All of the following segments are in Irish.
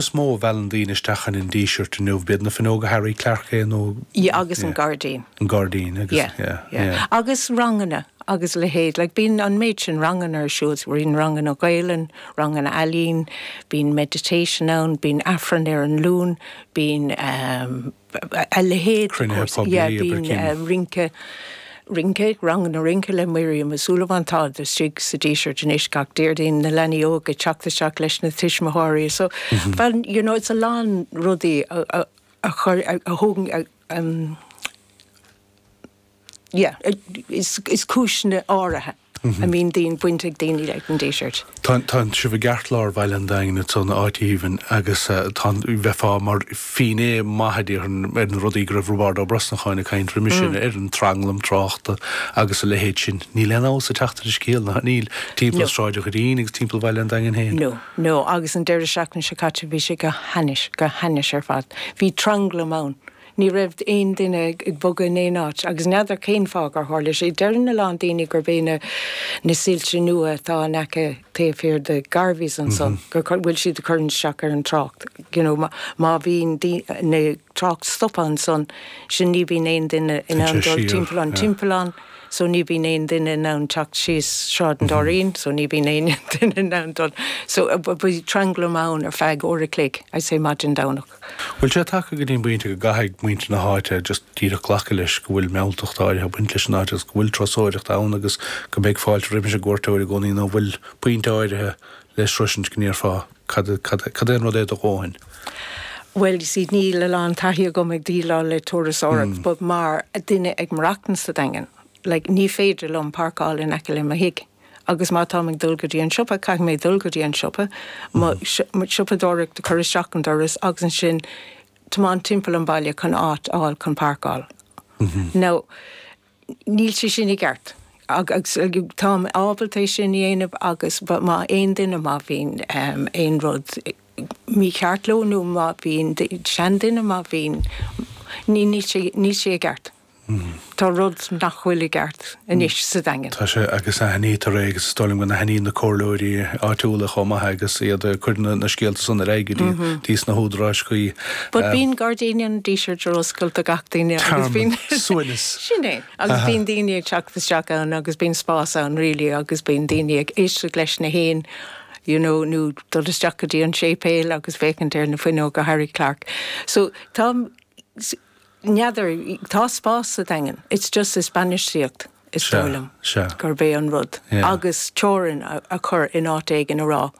is mó a mheallann daoine isteach sa Díseart inniu, b'fhéidir na fuinneoga Harry Clarke is dócha. Yeah, agus an gairdín. an gairdín agus. Yeah, yeah. Agus ranganna agus a leithéid, like bíonn an méid sin ranganna ar siúl, bíonn ranganna Gaelainn, ranganna ealaín, bíonn meditation ann, bíonn Aifreann ar an Luan, bíonn. a leithéid de cruinnithe poiblí a bhí ann. Rince, Rince, Ranganna Rince le Miriam Uí Súilleabháin tá sé istigh sa Díseart anois gach Déardaoin na leanaí óga ag teacht isteach leis na tuismitheoirí so bhuel you know it's a lán rudaí a chur a thóg Yeah, is cúiseanna áirithe a mbíonn daoine, baint ag daoine leis an Díseart. Tá sibh i gceart lár Bhaile an Daingin ansan in áit aoibhinn agus tá, bheifeá mar fhinné maith a déarfainn ar na rudaí go raibh Roibeard Ó Brosnacháin ag caint roimis seo ar an tranglam tráchta agus a leithéid sin. Níl aon fheabhas ag teacht ar an scéal, nach níl, timpeall Sráid an Doirín agus timpeall Bhaile an Daingin féin. No, no, agus an deireadh seachtaine seo caite bhí sé go hainnis, go hainnis ar fad. Bhí tranglam ann Ní raibh aon duine ag bogadh in aon áit agus n'fheadar cén fáth gur tharla sé. Deireann a lán daoine gurb é na soilse nua atá in aice taobh thiar de Garveys ansan go bhfuil siad ag cur isteach ar an trácht. You know má bhíonn an trácht stoptha ansan so ní bhíonn aon duine in ann dul timpeall an timpeallán so ní bhíonn aon duine in ann teacht síos Sráid an Doirín so ní bhíonn aon duine in ann dul so bhí tranglam ann ar feadh uair a chloig I'd say maidin Domhnaigh. Bhfuil sé tagtha go dtí an bpointe go gcaithfidh muintir na háite just díreach glacadh leis go bhfuil mealltacht áirithe ag baint leis an áit agus go bhfuil turasóireacht ann agus go mbeidh fáilte roimis an gcuairteoir i gcónaí nó bhfuil pointe áirithe le sroisint go ndéarfá cad, cad, cad é an rud é do dhóthain? Bhuel you see níl a lán taithí agam ag déileáil le turasóireacht but mar duine ag maireachtaint sa Daingean like ní féidir liom páirceáil in aice le mo thig. Agus má táim ag dul go dtí an siopa, caithfidh mé dul go dtí an siopa, mo shiopadóireacht a chur isteach an doras agus ansin tiomáint timpeall an bhaile chun áit a fháil chun páirceáil. Now, níl sé sin i gceart. Agus táim ábalta é sin a dhéanamh agus má aon duine, má bhíonn aon rud mícheart leo nó má bhíonn seanduine, má bhíonn, níl sé i gceart. Tá rud nach bhfuil i gceart anois sa Daingean. Tá sé, agus aithnítear é, agus is dóigh liom go n-aithníonn na comhairleoirí áitiúla chomh maith agus iad ag cur na scéalta san ar aghaidh go dtís na húdaráis chuí. But bíonn gairdíní an Dísirt ar oscailt do gach duine agus bíonn. Tearmann, suaimhneas. Sin é. Agus bíonn daoine ag teacht isteach ann agus bíonn spás ann really agus bíonn daoine ag éisteacht leis na héin you know nó dul isteach go dtí an séipéal agus féachaint ar na fuinneoga Harry Clarke. So tá, N'fheadar, tá spás sa Daingean, it's just is bainistíocht is dóigh liom gurb é an rud, agus teorainn a chur in áit éigin a rá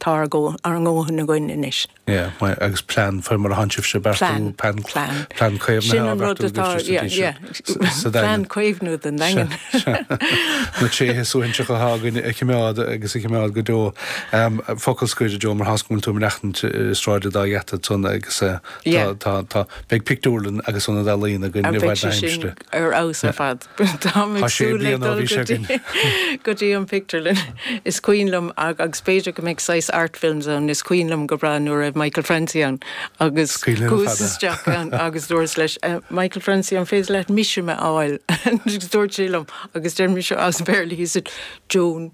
tá ár ndóthain againn anois. Yeah, agus plean faoi mar atánn sibhse ag beartú, plean caomhnaithe á bheartú go dtí seo, yeah, yeah, plean caomhnaithe don Daingean. Na tréithe suaithinseacha atá againn a chimeád agus a chimeád go deo. Focal scoir, Joan, mar tá's agam go bhfuil tú ag maireachtaint i Sráid an Dá Gheata ansan agus. Tá, tá, tá. Beidh pictiúrlann agus ionad ealaíona againn i bhfad na haimsire. Beidh sé sin ar fheabhas ar fad. Táim ag súil le dul go dtí, go dtí an pictiúrlann. Is cuimhin liom, agus b'fhéidir go mbeidh saghas Art Films ann, is cuimhin liom go breá nuair a raibh Michael Francie ann agus chuas isteach ann agus dúras leis, Michael Francie, an féidir leat Mishima a fháil? Agus dúirt sé liom, agus deir mise as Béarla, he said, Joan,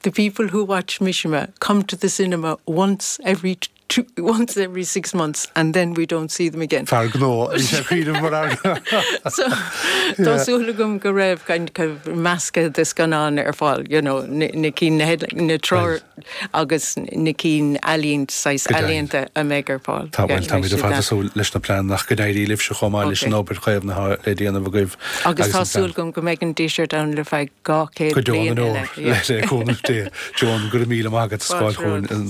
the people who watch Mishima come to the cinema once every once every six months and then we don't see them again. Fear gnó, bhí sé ag cuimhneamh mar fhear gnó. Tá súil agam go raibh kind of meascadh de scannáin ar fáil, you know, na cinn, na headlines, na treoir agus na cinn ealaínt, saghas ealaíonta a mbeidh ar fáil. Tá, bhuel, táimid ar fad ag súil leis na pleananna ach go n-éirí libhse chomh maith leis an obair chaomhnaithe le déanamh agaibh. Agus tá súil agam go mbeidh an Díseart ann le feadh Go deo na ndeor, le cúnamh Dé. Joan, go raibh míle maith agat as gabháil chugainn an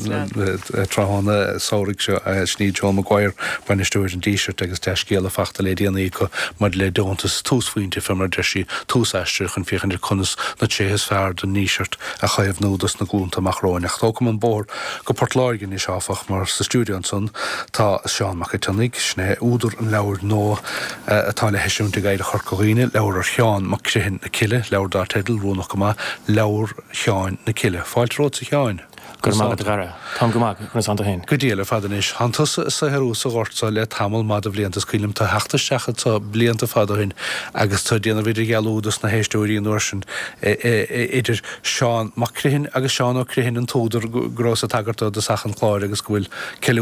tráthnóna samhraidh seo. Sin í Joan Maguire, Bainisteoir an Dísirt agus dea-scéala fachta le déanaí acu maidir le deontas túsphointe fé mar a deir sí, tús aistir chun féachaint ar conas na tréithe is fearr den nDíseart a chaomhnú dos na glúnta amach romhainn. Ach tógam an bóthar go Port Láirge anois áfach mar sa stiúideo ansan tá Seán Mac an tSionnaigh, sin é údar an leabhair nua, a atá le heisiúint ag Oidhreacht Chorca Dhuibhne, leabhar ar Sheán Mac Criomhthain na Cille, leabhar dar teideal, oiriúnach go maith, Leabhar Sheáin na Cille. Fáilte romhatsa a Sheáin! Go raibh maith agat a Dhara. Táim go maith, conas atá tú féin? Go diail ar fad anois. Thánn tusa ag saothrú sa ghort seo le tamall maith de bhlianta is cuimhin liom tú ag theacht isteach anso blianta fada ó shin agus tú ag déanamh idirdhealú dos na héisteoirí an uair sin idir Seán Mac Criomhthain agus Seán Ó Criomhthain an t-údar go rabhas ag tagairt dó i dtosach an chláir agus go bhfuil ceiliúradh